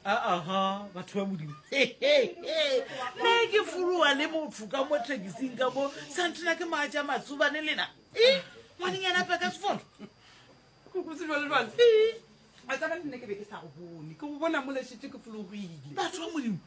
aa batho ba modimo ne ke foloa le motho ka mo thekising ka mo santena ke maatša matsubane lena e ngwaneng yana peka sefolo batho ba modimo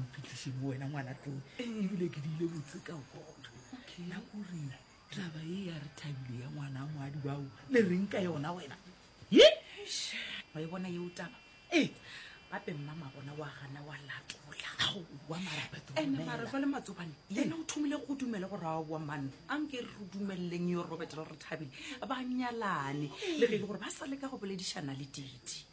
mpitliše bo wena ngwana tlong ebile ke diile botse ka kona nna kore taba e ya re thabile ya ngwana moadi bao le reng ka yona wena wa e bona yeo taba e bape mmama bona wa gana wa latolaoamarapetoenemarefale matsobane ene o thomile go dumele go rawa boa manna a nke re re dumeleleng yo robet re re thabile ba nyalane le ge e le gore ba sa le ka go boledišana le titi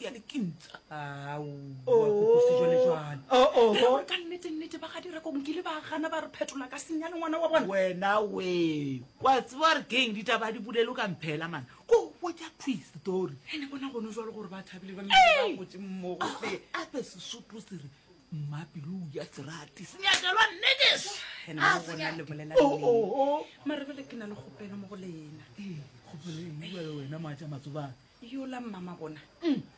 ya dikintsa ka nnetennete ba ga direkong kile ba gana ba re phetola ka senya le ngwana wa bona wena we wa tseba re keng ditaba di bulelo ka mphela mana ko botja twist story ene bona gone jwalo gore ba thabile ba gotse mmogo ape sesotho se re mmapelo ya serati senyakelwa nnekes ena bona le bolela mare bele ke na le kgopelo mo go lena wena moatša matsobane yola mmama bona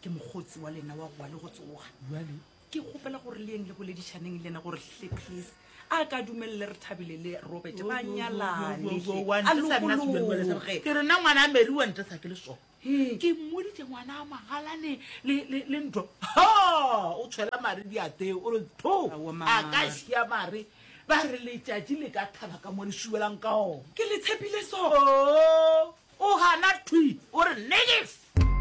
ke mokgotsi wa lena wa gowa le go tsoga jale ke kgopela gore le yeng le boledišaneng le ena gore hle please a ka dumelele re thabile le robert ba nyalanealoge ke rena ngwana a mary wa ntesa ke le so ke mmoditse ngwana a magalane le ntho o tshwela mare diateo o re tho a ka sia mare Ba re letšatši le ka thaba ka mo le šiwelang ka ona. Ke le tshepile soo. O gana thwi, o re negative.